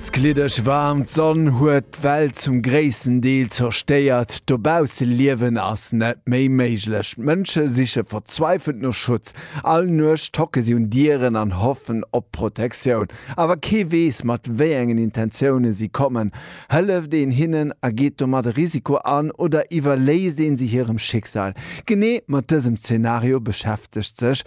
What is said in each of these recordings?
D'gliddeg waarmt Sonn huet d'Welt zum gréissten Deel zerstéiert. Dobausse liewen ass net méi méiglech. D'Mënsche siche verzweifelt no Schutz. All Nuecht tocke si un Dieren an hoffen op Protektioun. Awer kee weess, mat wéi engen Intentioune si kommen. Hëlleft een hinnen a geet domat e Risiko an oder iwwerléisst een si hirem Schicksal? Genee mat dësem Zenario beschäftegt sech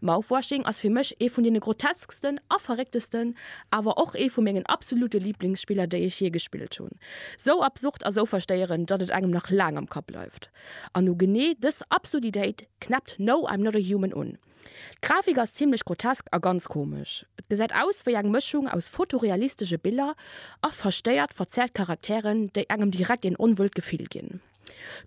Mouthwashing ass fir mech ee vun deene grotesksten a verrécktesten, awer och ee vu mengen absolute Lieblingsspiller, déi ech jee gespillt hunn. Sou absurd a sou verstéierend, datt et engem nach laang am Kapp bleift. An u genee dës Absurditéit knäppt No, I'm Not a Human un. D'Grafik ass zimlech grotesk a ganz komesch. Et gesäit aus wéi eng Mëschung aus fotorealistesche Biller a verstéiert, verzerrt Charakteren, déi engem direkt een onwuelt Gefill ginn.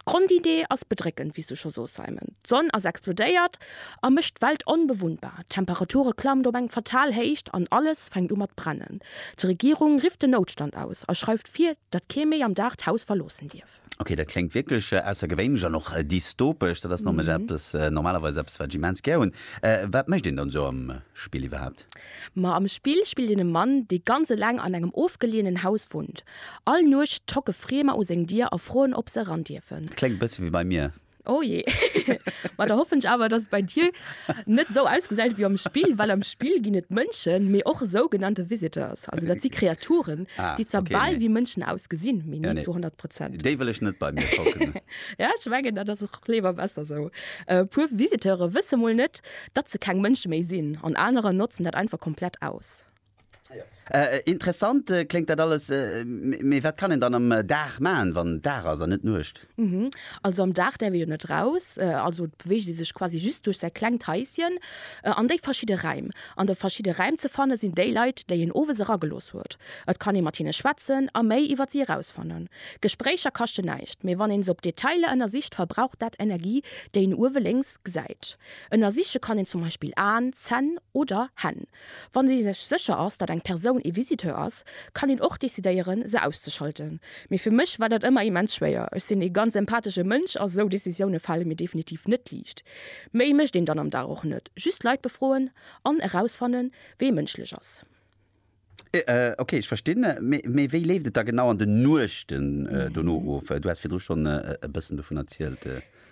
D'Grondidee ass bedréckend, wéi s du scho soos, Simon. D'Sonn ass explodéiert a mécht d'Welt onbewunnbar. D'Temperature klammt op eng fatal Héicht an alles fänkt u mat brennen. D'Regierung rifft den Noutstand aus a schreift vir, datt kee méi am Dag d'Haus verloossen dierf. Ok, dat kléngt wierklech aussergewéinlech an och dystopesch. Dat ass nämlech eppes, normalerweis eppes, wat ech immens gär hunn. Wat mécht een dann esou am Spill iwwerhaapt? Ma am Spill spillt een e Mann, dee ganz eleng an engem ofgelienen Haus wunnt. All Nuecht tocken Friemer u seng Dier a froen, ob se eran dierfen. Kléngt e bësse wéi bei mir. Oh jee. Ma da hoffen ech awer, dass et bei dir net esou ausgesäit wéi am Spill, well am Spill ginn et Mënschen, mee och sougenannte visitors. Also dat si Kreaturen, déi zwar bal wéi Mënschen ausgesinn, mee ni zu honnert Prozent. Déi wëll ech net bei mir tocken. Jo, ech mengen, dat ass och léiwer besser esou. E puer Visiteure wësse mol net, Datt se keng Mënsche méi sinn an aneren notzen dat einfach komplett aus. Interessant kléngt dat alles, mee wat kann een dann am Dag maachen, wann Dag ass an net Nuecht? Also am Dag däerf ee jo net raus, also beweegt ee sech quasi just duerch säi klengt Haisschen an déi verschidde Räim. An de verschidde Räim ze fanne sinn déi Leit, déi een owes eragelooss huet. Et kann ee mat hinne schwätzen a méi iwwer si erausfannen. Gespréicher kaschten näischt, mee wann een se op Detailer ënnersicht, verbraucht dat Energie, déi een uewe lénks gesäit. Ënnersiche kann een zum Beispill Aen, Zänn oder Hänn. Wann ee sech sécher ass, datt eng Persoun ee Visiteur ass, kann een och decidéieren, se auszeschalten. Mee fir mech war dat ëmmer immens schwéier. Ech sinn ee ganz empathesche Mënsch a sou Decisioune fale mir definitiv net liicht. Méi mécht een dann am Dag och net, just Leit befroen an erausfannen, wee mënschlech ass. Ok, ech verstinn. Mee wéi leeft et da genau an den Nuechten dono of? Du has virdru schonn e bëssen dovun erzielt.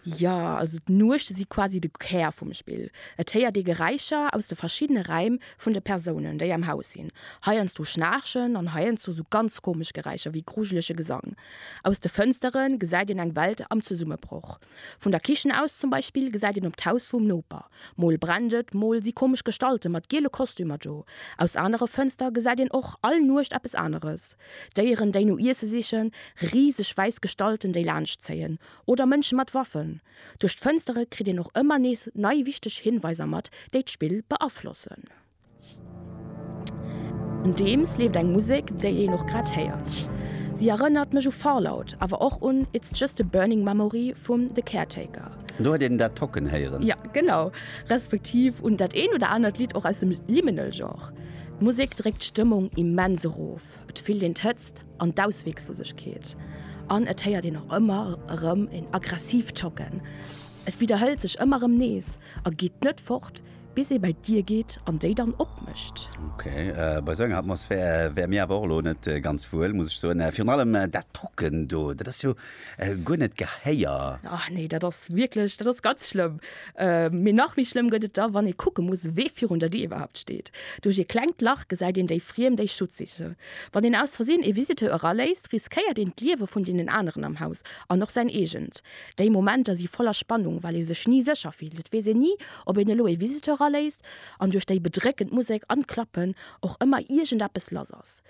Jo, also d'Nuechte si quasi de Kär vum Spill. Et héiert ee Geräischer aus de verschiddene Räim vun de Persounen, déi am Haus sinn. Heiansdo Schnaarchen an heiansdo sou ganz komesch Geräischer wéi grujelege Gesang. Aus de Fënstere gesäit een eng Welt am Zesummebroch. Vun der Kichen aus zum Beispill gesäit een op d'Haus vum Noper. Mol brennt et, mol si komesch Gestalte mat giele Kostümer do. Aus anere Fënster gesäit een och all Nuecht eppes aneres, Déieren, déi no Iesse sichen, riseg wäiss Gestalten, déi laanscht zéien, oder Mënsche mat Waffen. Duerch d'Fënstere kritt een och ëmmer nees nei wichteg Hinweiser mat, déi d'Spill beaflossen. Andeems leeft eng Musek, déi een och grad héiert. Si erënnert mech u Fallout, awer och un It's Just a Burning Memory vum The Caretaker. Do huet een dat Tocken héieren. Jo, genau. Respektiv un dat eent oder anert Lidd och aus dem Liminal-Genre. D'Musek dréckt d'Stëmmung immens erof. Et fillt een d'Hëtzt an d'Ausweeglosegkeet. An et héiert een och ëmmer erëm en aggressiivt Tocken. Et widderhëlt sech ëmmer erëm nees a geet net fort. Bis ee bäi d'Dier geet an déi dann opmécht. Ok, bei esou enger Atmosphär wäre mir awer och elo net ganz wuel, muss ech soen. Virun allem dat Drucken do, dat ass jo guer net gehéier. Ah nee, dat ass wierklech, dat ass ganz schlëmm. Mee nach méi schlëmm gëtt et da, wann ee kucke muss, wee virun der Dier iwwerhaapt steet. Duerch ee klengt Lach gesäit een déi Friem, déi Schutz sichen. Wann een aus Versinn ee Visiteur eraléisst, riskéiert een d'Liewe vun deenen aneren am Haus an och säin eegent. Déi Momenter si voller Spannung, well ee sech ni sécher fillt. Et weess een ni, ob een elo ee Visiteur eraléisst an duerch déi bedréckend Musek an d'Klappen och ëmmer iergendeppes lass ass.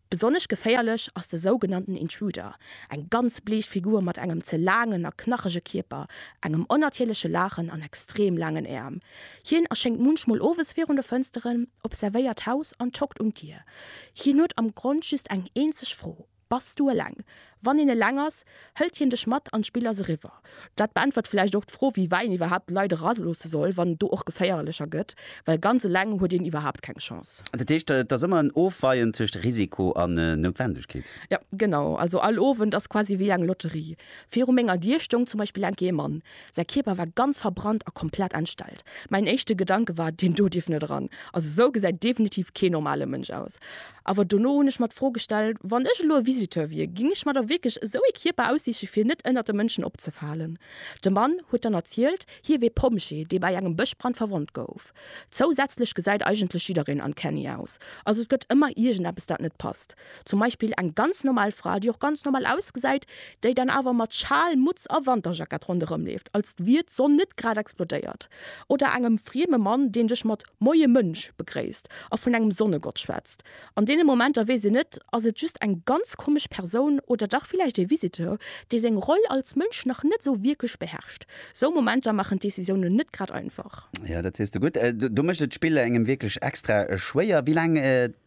Besonnesch geféierlech ass de sougenannten Intruder, eng ganz bleech Figur mat engem ze laangen a knachege Kierper, engem onnatierleche Laachen an extrem laangen Äerm. Hien erschéngt munchmol owes virun de Fënsteren, observéiert d'Haus an tockt un d'Dier. Hien huet am Grond just eng eenzeg Fro, Bass du eleng? Wann een eleng ass, hëlt hien dech mat an d'Spill ass eriwwer. Dat beäntwert vläicht och d'Fro, wéi wei een iwwerhaapt d'Leit eraloosse soll, wann et do och geféierlecher gëtt, well ganz eleng huet een iwwerhaapt keng Chance. Dat heescht, et ass ëmmer en Ofweien tëscht Risiko an Noutwendegkeet? Jo, genau. Also all Owend ass quasi wéi eng Lotterie. Viru menger Dier stoung zum Beispill eng Kéier ee Mann. Säi Kierper war ganz verbrannt a komplett entstellt. Mäin éischte Gedanke war, Deen do dierf net eran. Also esou gesäit definitiv kee normale Mënsch aus. Awer dono hunn ech mer d'Fro gestellt, Wann ech elo e Visiteur wier, géing ech mer da wierklech esou ee Kierper aussiche fir net ënnert de Mënschen opzefalen? De Mann huet dann erzielt, hie wier Pompjee, dee bei engem Bëschbrand verwonnt gouf. Zousätzlech gesäit eigentlech jiddereen uncanny aus. Also et gëtt ëmmer iergendeppes dat net passt. Zum Beispill eng ganz normal Fra, déi och ganz normal ausgesäit, déi dann awer mat Schal, Mutz a Wanterjackett ronderëmleeft, als wier d'Sonn net grad explodéiert. Oder engem frieme Mann, deen dech mat Moie Mënsch begréisst a vun engem Sonnegott schwätzt. An deene Momenter weess een net, ass et just eng ganz komesch Persoun oder dach villäicht ee Visiteur, dee seng Roll als Mënsch nach net esou wierklech beherrscht. Sou Momenter maachen d'Decisiounen net grad einfach. Jo, dat sees de gutt. Do mécht et d'Spill engem wierklech extra schwéier. Wéi laang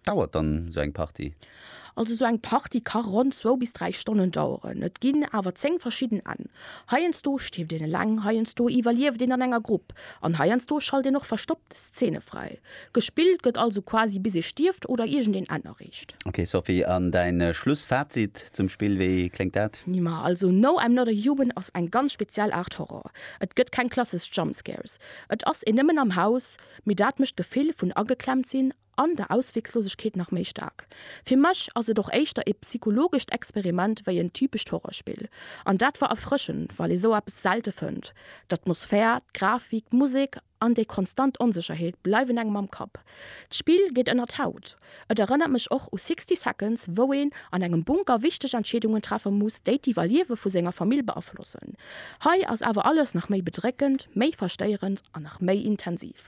Dauert dann sou eng Party? Also sou eng Party ka ronn zwou bis dräi Stonnen daueren. Et ginn awer 10 verschidden Enn. Heiansdo stierft een eleng, heiansdo iwwerlieft een an enger Grupp an heiansdo schalt een och verstoppt Szene fräi. Gespillt gëtt also quasi bis ee stierft oder iergendeen Enn erreecht. Ok Sophie, an däin Schlussfazit zum Spill, wéi kléngt dat? Nima, also No I'm Not A Human ass eng ganz speziell Aart Horror. Et gëtt keng klassesch Jumpscares, et ass een nëmmen am Haus, mee dat mécht d'Gefill vun ageklemmt sinn, an der Ausweglosegkeet nach méi staark. Fir mech ass et och éischter ee psychologescht Experiment wéi en typescht Horrorspill. An dat war erfrëschend, well ee sou eppes selte fënnt. D'Atmosphär, d'Grafik, d'Musek an déi konstant Onsécherheet bleiwen engem am Kapp. D'Spill geet ënner d'Haut. Et erënnert mech och u Sixty Seconds, wou een an engem Bunker wichteg Entscheedungen treffe muss, déi d'Iwwerliewe vu senger Famill beaflossen. Hei ass awer alles nach méi bedréckend, méi verstéierend an nach méi intensiv.